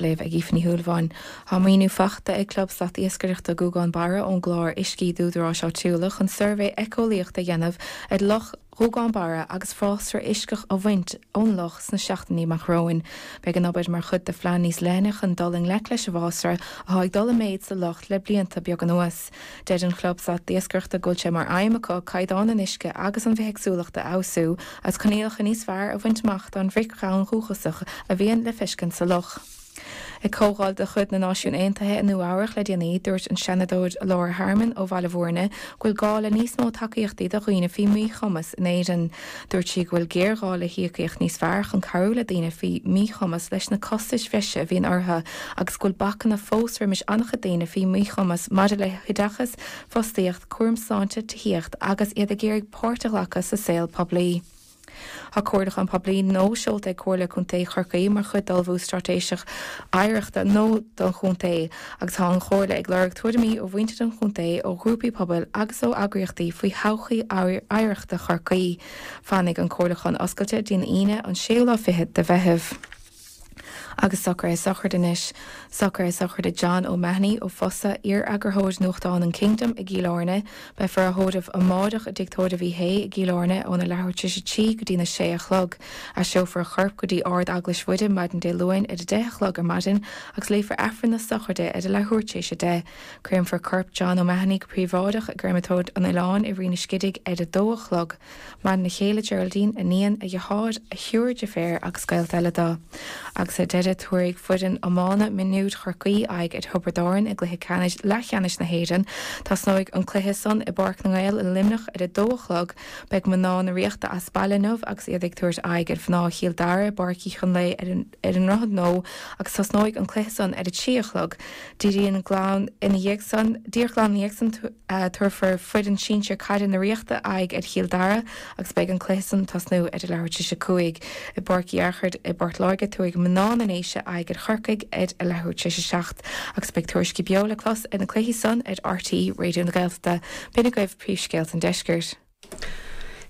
Léamh ag Aoife Ní Shúilleabháin Thá maoiniú faighte ag Club Slat Iascaireachta Gúgán Barra ón gClár Uiscí d'Údaráis Áitiúla chun suirbhé éiceolaíochta a dhéanamh ar Loch Ghúgán Barra agus fásra uisceach a bhaint ón loch sna seachtainí amach romhainn. Beidh an obair mar chuid de phlean níos leithne chun dul i ngleic leis an bhfásra atá ag dul i méid sa loch le blianta beaga anuas. Deir an Club Slat Iascaireachta go bhfuil sé mar aidhm acu caighdeán an uisce agus an bhithéagsúlacht a fheabhsú agus coinníollacha níos fearr a bhaint amach don bhreac dhonn dhúchasach a bhíonn le feiscint sa loch. Ag comhdháil de chuid na Náisiún Aontaithe i Nua Eabhrach le déanaí, dúirt an Seanadóir Laura Harmon ó Bhaile Mhúirne go bhfuil gá le níos mó tacaíochtaí do dhaoine faoi mhíchumas in Éirinn. Dúirt sí go bhfuil géarghá le híocaíocht níos fearr chun cabhrú le daoine faoi mhíchumas leis na costais bhreise a bhíonn orthu agus go bhfuil bacanna fós roimis an-chuid daoine faoi mhíchumas maidir le hoideachas, fostaíocht, cúram sláinte, tithíocht agus iad ag iarraidh páirt a ghlacadh sa saol poiblí. Thá comhairliúchán poiblí nua seolta ag Comhairle Contae Chorcaí mar chuid d'ullmhú straitéis oidhreachta nua don chontae. agus thá an Chomhairle ag lorg tuairimí ó mhuintir an chontae, ó ghrúpaí pobail agus ó eagraíochtaí faoi thodhchaí oidhreachta Chorcaí. Fanfaidh an comhairliúchán oscailte go dtí an Aoine an séú lá fichead de Mheitheamh. Agus socrú sochraide anois. Socrú sochraide John O'Mahony ó Fosadh iar-eagarthóir nuachtán an Kingdom i gCill Áirne, Beifear á thórramh amáireach i dTigh Tórraimh Uí Shé i gCill Áirne óna leathuair tar éis a trí go dtína sé a chlog. Aistreofar a chorp go dtí Ard Eaglais Mhuire maidin Dé Luain ar a deich a chlog ar maidin agus léifear Aifreann na sochraide ar a leathuair tar éis a deich. Créamfar corp John O'Mahony go príobháideach i gCréamatóir an Oileáin i Rinn an Scidígh ar a dó a chlog. Maireann a chéile Geraldine, iníon, a dheartháir, a thriúr deirféar agus gaolta eile de. Agus ar deireadh tabharfaidh foireann iomána mionúir Chorcaí aghaidh ar Thiobraid Árann i gcluiche ceannais leathcheannais na hÉireann. Tosnóidh an cluiche san i bPáirc na nGael i Luimneach ar a dó a chlog. Beidh mná na Ríochta as baile inniu agus iad ag tabhairt aghaidh ar mhná Chill Dara i bPáirc Uí Chonlaoidh ar an ar an nDroichead Nua agus tosnóidh an cluiche san ar a trí a chlog. Díreach glan ina dhiaidh san, díreach glan ina dhiaidh san, tabharfaidh foireann sinsir caide na Ríochta aghaidh ar Chill Dara agus beidh an cluiche san tosnú ar a leathuair tar éis a cúig. I bPáirc Uí Fhearchair i bPort Láirge tabharfaidh Mná na nDéise aghaidh ar Chorcaigh ar a leathuair tar éis a seacht agus beidh tuairiscí beo le clos ar na cluichí san ar RTÉ Raidió na Gaeltachta. B'in agaibh príomhscéalta an deiscirt.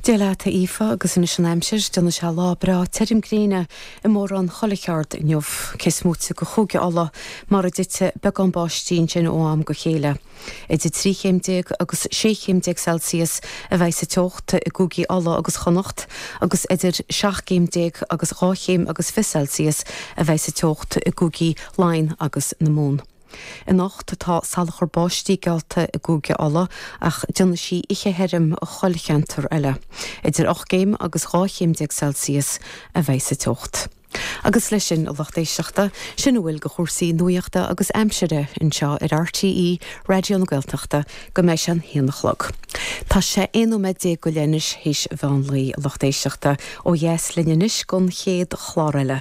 Dia leat, a Aoife, agus anois an aimsir, déanfaidh sé lá breá tirim gréine i mórán chuile cheard inniu, cé smúiteach i gCúige Uladh, mar a dtitfidh beagán báistí ansin ó am go chéile. Idir trí chéim déag agus sé chéim déag Celsius a bheidh sa teocht i gCúigí Uladh agus Chonnacht, agus idir seacht gcéim déag agus dhá chéim agus fiche Celsius a bheidh sa teocht i gCúigí Laighean agus na Mumhan. Anocht tá salachar báistí geallta i gCúige Uladh ach déanfaidh sí oíche thirim i chuile cheantar eile. Idir ocht gcéim agus 12 chéim Celsius a bheidh sa teocht. Agus leis sin, a lucht éisteachta, sin a bhfuil de chúrsaí nuachta agus aimsire anseo ar RTÉ Raidió na Gaeltachta go mbeidh sé an haon a chlog. Tá sé aon nóiméad déag go leith anois théis an mheán lae, a lucht éisteachta. Ó dheas linn anois gon chéad chlár eile.